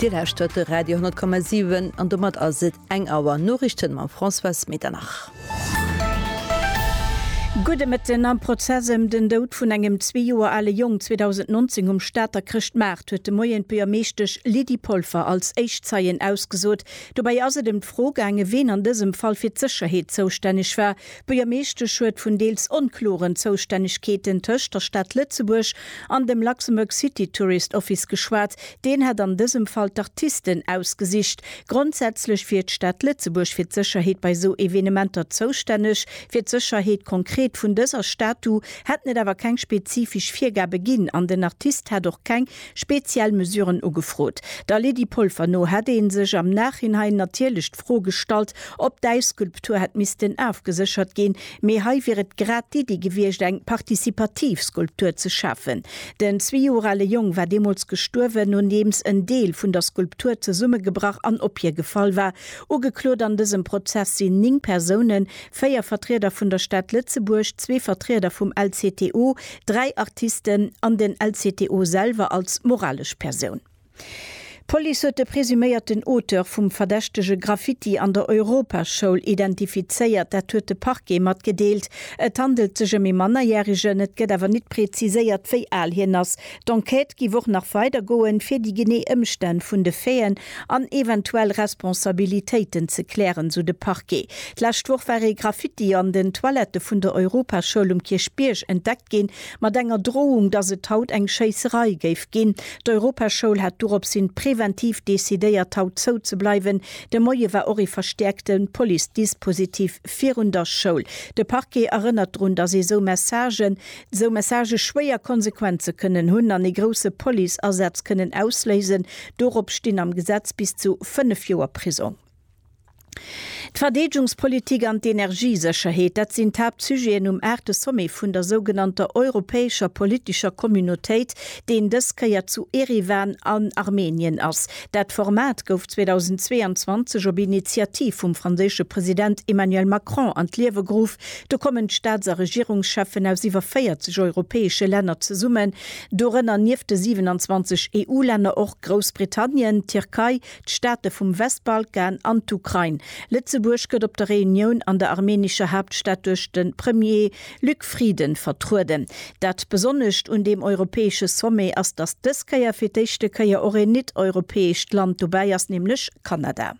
Dir lauschtert de Radio 10,7 an domat ass et eng Auer Noriichten mam Françoise Medernach. Gudde Mëtten. Am Prozess ëm den Doud vun engem zwee Joer ale Jong 2019 um Stater Chrëschtmaart huet de Moien d'Buergermeeschtesch Lydie Polfer als éischt Zeien ausgesot. Dobäi ass et ëm d'Fro gaangen, ween an dësem Fall fir d'Sécherheet zoustänneg war. D'Buergermeeschtesch huet vun deels onkloren Zoustännegkeeten tëscht der Stad Lëtzebuerg an dem Luxembourg City Tourist Office geschwat. Deen hätt an dësem Fall d'Artisten ausgesicht. Grondsätzlech wier d'Stad Lëtzebuerg fir d'Sécherheet bei esou Evenementer zoustänneg. Fir d'Sécherheet konkret vun dëser Statu hätten et awer keng spezifesch Virgabe ginn an den Artist hätt och keng speziell Mesuren ugefrot. Der Lydie Polfer no hätt ee sech am Nachhinein natierlech d'Fro gestallt, ob d'Äisskulptur hätt missten ofgeséchert ginn, mee hei wier et grad d'Iddi gewiescht, eng partizipativ Skulptur ze schafen. Den zwee Joer ale Jong war deemools gestuerwen, nodeems en Deel vun der Skulptur zesummegebrach an op hie gefall war. Ugeklot an dësem Prozess sinn néng Persounen, véier Vertrieder vun der Stad Lëtzebuerg, zwee Vertrieder vum LCTO, dräi Artisten an den LCTO selwer als moralesch Persoun. D'Police huet de presuméierten Auteur vum verdächtege Graffiti an der Europaschoul identifizéiert. Dat huet de Parquet matgedeelt. Et handelt sech ëm ee Mannerjäregen, et gëtt awer nit preziséiert, wéi al hien ass. D'Enquête giff och nach weider goen, fir déi genee Ëmstänn vun de Faiten an eventuell Responsabilitéiten ze klären, sou de Parquet. D'lescht Woch war ee Graffiti an den Toilette vun der Europaschoul um Kierchbierg entdeckt ginn, mat enger Drohung, dass et haut eng Schéisserei géif ginn. D'Europaschoul hat doropshin präventiv decidéiert, haut zou ze bleiwen. De Moie war och ee verstäerkte Police-Dispositif virun der Schoul. De Parquet erënnert drun, dass ee sou Messagen Esou Messagë schwéier Konsequenze kënnen hunn an ee grousse Police-Asaz kënnen ausléisen. Dorop stinn am Gesetz bis zu 5 Joer Prisong. D'Verdeedgungspolitik an d'Energiesécherheet, dat sinn d'Haaptsujeten um aachte Sommet vun der sougenannter europäescher politescher Communautéit, deen dës Kéier zu Eriwan an Armenien ass. Dat Format gouf 2022 op Initiativ vum franséische President Emmanuel Macron an d'Liewe geruff. Do kommen d'Staats a Regierungscheffen aus iwwer 40 europäesche Länner zesummen, dorënner nieft de 27 EU-Länner och Groussbritannien, d'Tierkei, d'Staate vum Westbalkan an d'Ukrain. Lëtzebuerg gëtt op der Reunioun an der armenescher Haaptstad duerch de Premier Luc Frieden vertrueden. Dat Besonnescht un deem europäesche Sommet ass, datt dës Kéier fir d'éischte Kéier och een nit-europäescht Land dobäi ass, nämlech Kanada.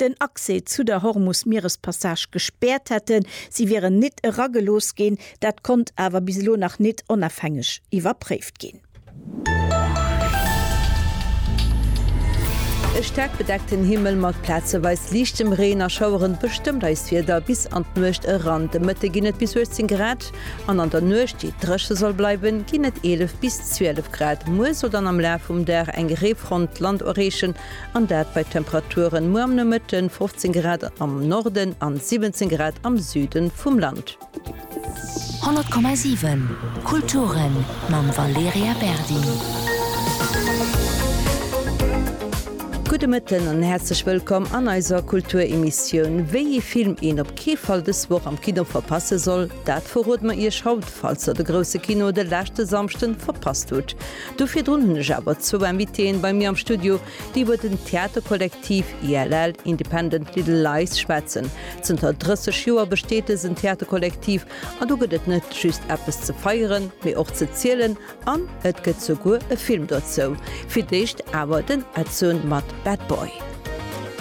den Accès zu der Hormus-Mierespassage gespäert hätten. Si wieren nit eragelooss ginn. Dat konnt awer bis elo nach nit onafhängeg iwwerpréift ginn. E staark bedeckten Himmel mat plazeweis liichtem Reen a Schaueren bestëmmt eist Wieder bis an d'Nuecht eran. De Mëtte ginn et bis 18 Grad an an der Nuecht, déi dréche soll bleiwen, ginn et 11 bis 12 Grad. Muer soll dann am Laf vum Dag eng Reefront d'Land erreechen An dat bei Temperaturen muer am Nomëtten 15 Grad am Norden an 17 Grad am Süden vum Land. 100,7 Kulturen mam Valerija Berdi. Gudde Mëtten an häerzlech wëllkomm an eiser Kulturemissioun. Wéi ee Film een op kee Fall dës Woch am Kino verpasse soll, dat verrode mer Iech haut, falls der de grousse Kino de leschte Samschden verpasst hutt. Do virdrun hunn ech awer zwou Invitéeën bei mir am Studio, déi iwwer den Theaterkollektiv ILL, Independent Little Lies, schwätzen. Zënter 30 Joer besteet dësen Theaterkollektiv an do gëtt et net just eppes ze feieren, mee och ze zielen an et gëtt souguer e Film dozou. Fir d'éischt awer den Edsun mat Bad Boy.